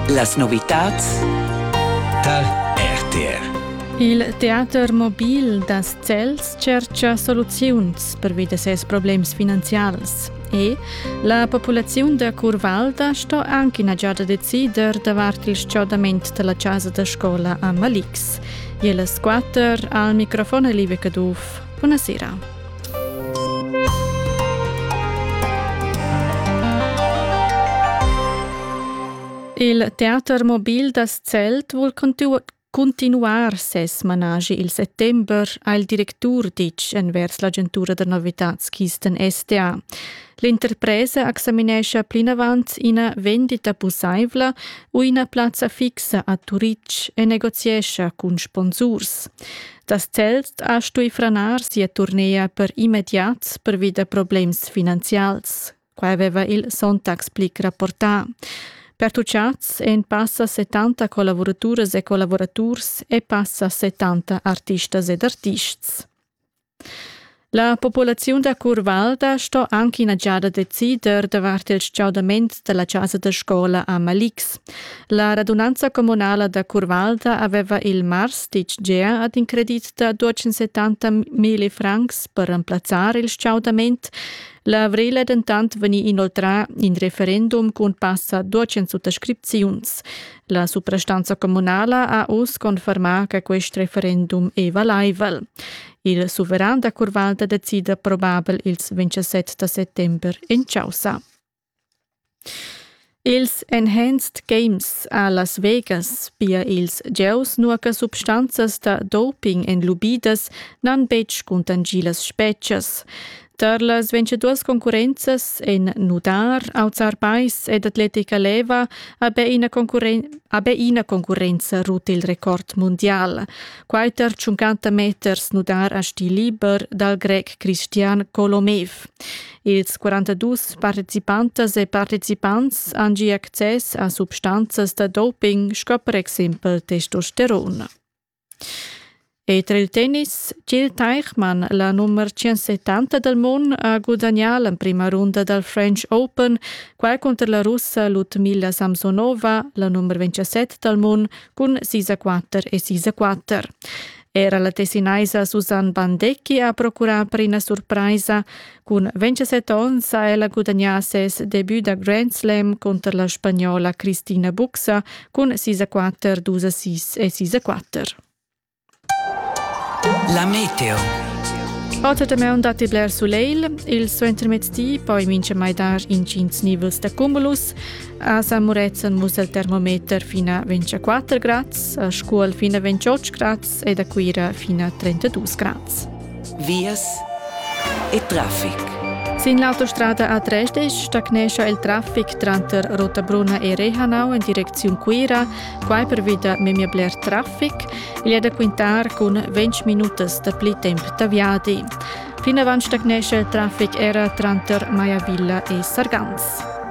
Las novitads tar RTR. Il teater mobil da Zels tschercha soluziuns pervi da ses problems finanzials. E la populaziun da Curvalda sto anche ina giada decider davart il stgaudament della casa da scola a Malix. Jeles quatter al microfon è Live Caduff. Buonasera. Il teater mobil da Zelt vul cuntinuar ses managi il settember, ha il directur ditg envers l'agentura da novitads Kisten STA. L'interpresa examinescha plinavant ina vendita pussaivla u ina plazza fixa a Turitg e negoziescha cun sponsurs. Das Zelt ha stui franar sia turnea per immediat pervi da problems finanzials. Quai aveva il Sonntag Blick rapportà. Pertucciats en passa 70 collavuraturas e collavuraturs e passa 70 artistas ed artists. La populaziun da Curvalda sto anche ina giada decider davart il stgaudament dalla casa da scola a Malix. La radunanza communala da Curvalda aveva il mars ditg gea ad in credit da 270 mila francs per remplazzar il stgaudament. L'avril è dentant vegnì inoltrà in referendum cun passa 200 suttascripziuns. La suprastanza communala ha uss confermà che quest referendum è valaivel. Il suveran da Curvalda decida probabel ils 27 da settember in chaussa. Ils Enhanced Games a Las Vegas, pia ils gieus nua che substanzas da doping èn lubidas, n'han betg cuntangì las spezias. Tar las vinciduas concurrenzas en nudar, auzar pais ed atletica leva habe ina, concurren habe ina concurrenza rut il record mundial. Quaiter 50 meters nudar a stil liber dal grec Christian Kolomev. Ils 42 participantas e partecipants han gi access a substanzas da doping sco per exempel testosteron. E tra il tennis Gil Teichmann, la nummer 170 dal mund, ha gudagnà l'emprima runda dal French Open, quai cunter la russa Ludmila Samsonova, la nummer 27 dal mund, cun sis a quatter e sis a quatter. Era la tessinaisa Susanne Bandecchi ha procurà per ina surpraisa, Cun 27 onns ha ella gudagnà ses debut da Grand Slam cunter la spagnola Cristina Buxa cun sisa quatter, dus assist e sisa quatter. La meteo. Oter damaun datti bler sulegl. Il suentermezdi poi mincha mai dar intgins nivels da cumulus. A San Murezzan muss il termometer fino a 24 grads, a Scuol fino a 28 grads è da Cuira fin a 32 grads. Vias e traffic. Sin l'autostrada a Dresdisch stagnescha il traffic tranter Rotabruna e Rehanau en direcziun Cuira, quai pervi da memia bler traffic. Igl è da quintar cun 20 minutas da pli temp da viadi. Plinavant stagnescha il traffic era tranter Maiavilla e Sargans.